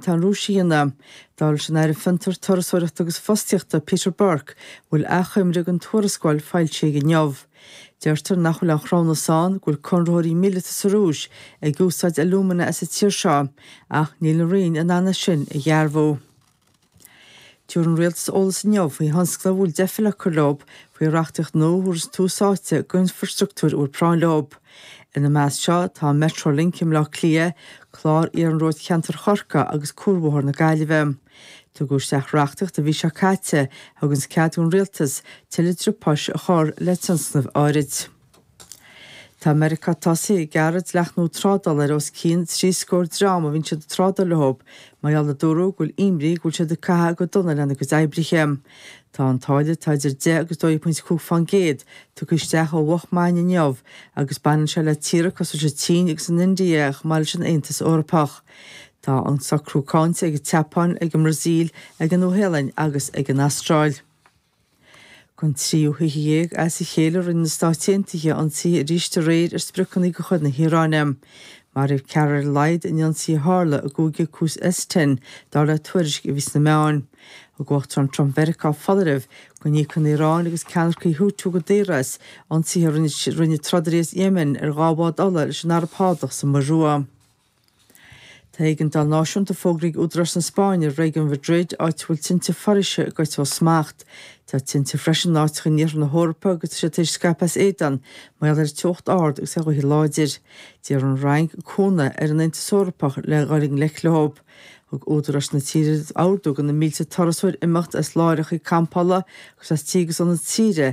sa Rúis á dhéanamh. Dúirt an tAire Fiontar, Turasóireachta agus Fostaíochta, Peter Burke, a bhfuil achoimre ar an tuarascáil foilsithe aige inniu. Deirtear nach bhfuil aon chruthúnas ann go bhfuil conraitheoirí míleata sa Rúis ag úsáid alúmana as an tír seo, ach níl an roinn in ann é sin a dhearbhú. Tabharfaidh an Rialtas eolas inniu faoi thionscnaimh a bhfuil deifir le cur leo faoi reachtaíocht nua a thabharfas tús áite d'infreastruchtúr a bhfuil práinn leo. Ina measc seo tá Metrolink i mBleá Cliath, clár Iarnróid Cheantar Chorcaí agus Cuarbhóthar na Gaillimhe. Tugadh isteach reachtaíocht an mhí seo caite a thuganns cead don Rialtas tuilleadh driopáis a chur le tionscnaimh áirid. Tá Meiriceá tosaithe ag gearradh dleachtanna trádála ar os cionn trí scór dream a bhíonn siad ag trádáil leo mar gheall, a dúradh, go bhfuil imní go bhfuil siad ag caitheamh go dona lena gcuid oibrithe. Tá an táille atá idir deich agus dó dhéag pointe cúig faoin gcéad tugtha isteach ó mhoch maidin inniu agus baineann sé le tíortha cosúil leis an tSín agus an India chomh maith leis an Aontas Eorpach. Tá an socrú cáinte ag an tSeapáin, ag an mBrasaíl, ag an Nua-Shéalainn agus ag an Astráil. Don tríú hoíche dhéag as a chéile rinne na Stáit Aontaithe ionsaithe arís aréir ar spriocanna de chuid na hIaráine. Maraíodh ceathrar ar a laghad in ionsaí a tharla i gcúige Khuzestan, dar le tuairisc a bhí sna meáin. Thug an tUachtarán Trump Mheiriceá foláireamh go n-íocfadh an Iaráin agus ceannaircigh Houthi go daor as ionsaithe a rinne trodairí as Yemen ar dhá bhád ola leis an Araib Shádach sa Muir Rua. Tá éigeandáil náisiúnta fógraithe ag údaráis na Spáinne i réigiún Mhadrid, áit a bhfuil tinte foraoise ag goil ó smacht. Tá tinte freisin in áiteacha in iarthar na hEorpa agus tá siad tar éis scaipeadh as éadan, mar gheall ar teocht ard agus ar ghaotha láidre. D'iarr an Fhrainc cúnamh ar an Aontas Eorpach le dhul i ngleic leo. Thug údaráis na tíre ordú do na mílte turasóir imeacht as láithreacha campála agus as tithe agus ionaid saoire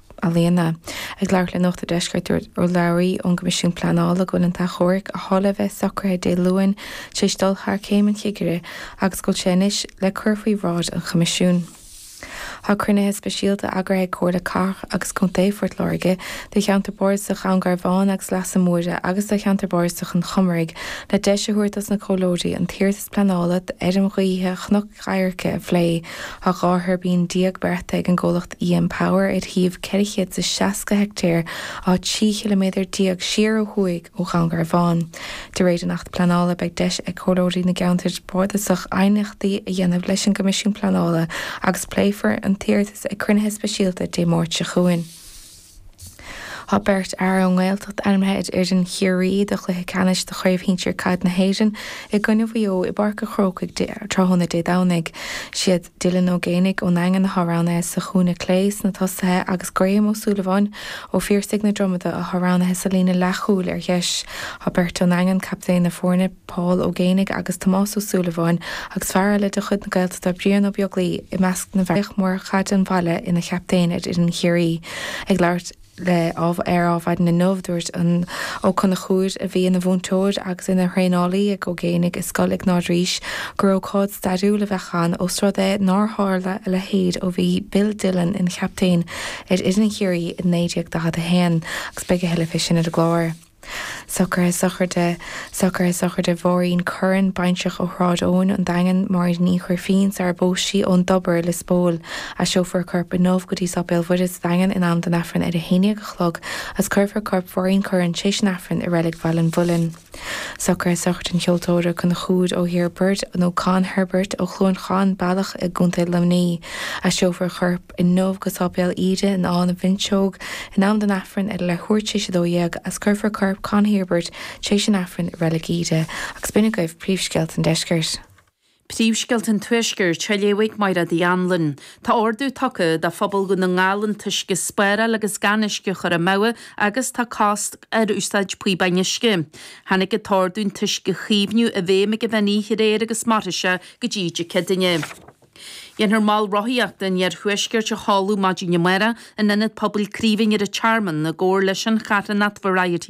Ealaíona. Ag labhairt le Nuacht an Deiscirt, dúirt urlabhraí ón gCoimisiún Pleanála go bhfuil an t-achomharc a bhí le a bheith socraithe Dé Luain tar éis dul thar Chéim an Chigire agus go bhfuil sé anois le cur faoi bhráid an Choimisiúin. Tá cruinnithe speisialta eagraithe ag Comhairle Cathrach agus Contae Phort Láirge do Cheantar Bardasach Dhún Garbhán agus Leasa Móire agus do Cheantar Bardasach an Chomaraigh le deis a thabhairt dos na comhairleoirí an t-iarratas pleanála d'fheirm ghaoithe Chnoc Airce a phlé. Tá dhá thuirbín déag beartaithe ag an gcomhlacht EMPower ar shuíomh ceithre chéad is seasca heictéar áit trí chiliméadar déag siar ó thuaidh ó Dhún Garbhán. De réir an Acht Pleanála beidh deis ag comhairleoirí na gCeantar Bardasach aighneachtaí a dhéanamh leis an gCoimisiún Pleanála agus pléifear an t-iarratas ag cruinnithe speisialta Dé Máirt seo chugainn. Tá beirt fhear ón nGaeltacht ainmithe ar fhoireann Chiarraí do chluiche ceannais Chraobh Shinsir Caide na hÉireann i gcoinne Mhaigh Eo i bPáirc a' Chrócaigh tráthnóna Dé Domhnaigh. Siad Dylan Ó Géanaigh ón nDaingean atá roghnaithe sa chúinne clé sna tosaithe agus Graham Ó Súilleabháin ó Phiarsaigh na Dromada atá roghnaithe sa líne leathchúil ar dheis. Tá beirt ón nDaingean captaen na foirne. Paul Ó Géibheannaigh agus Tomás Ó Súilleabháin agus fear eile de chuid na Gaeltachta, Brian Ó Beaglaoich, i measc na bhfear. Bhíodh Murchadh an Bhaile ina chaptaen ar fhoireann Chiarraí. Ag labhairt le ar Adhmhaidin inniu, dúirt an Ó Conchúir, a bhí ina mhúinteoir agus ina thraenálaí ag Ó Géibheannaigh i Scoil Iognáid Rís, gur ócáid stairiúil a bheadh ann ós rud é nár tharla a leithéid ó bhí Bill Dillon ina chaptaen ar fhoireann Chiarraí i 1941 agus beidh a thuilleadh fé sin ar an gclár. Socruithe Sochraide, Socruithe Sochraide Mháirín Curran, baintreach ó Shráid Eoin, An Daingean, Máirín Ní Ghrifín, sarar phós sí ón dTobar, Lios Póil. Aistreofar a corp inniu go dtí Sáipéal Mhuire sa Daingean in am don Aifreann ar a haon dhéag a chlog agus cuirfear corp Mháirín Curran tréis an Aifrinn i Reilig Bhaile an Mhuilinn. Socruithe Sochraide an Cheoltóra Conchúir Ó hEirbert, nó Con Herbert, ó Chluain Chon Bealach i gContae Luimnigh. Aistreofar a chorp. inniu go Sáipéal Íde in Áth na bhFuinseog in am don Aifreann ar leathuair tréis a dó dhéag agus cuirfear corp Con Herbert tréis an Aifrinn i Reilig Íde agus b'in agaibh príomhscéalta an deiscirt. Príomhscéalta an tuaiscirt a léifidh Maighread Uí Anluain. Tá ordú tugtha do phobal Dhún na nGall an t-uisce a spáráil agus gan uisce a chur amú agus tá cosc ar úsáid píobáin uisce. Tháinig an t-ordú an t-uisce a chaomhnú i bhfeidhm ag an mheán oíche aréir agus mairfidh sé go dtí Dé Céadaoine. Déanfar Mol Rothaíochta an Iarthuaiscirt a sheoladh maidin amárach in ionad Pobail Craoibhín ar an Tearmann i gcomhar leis an charthanacht Variety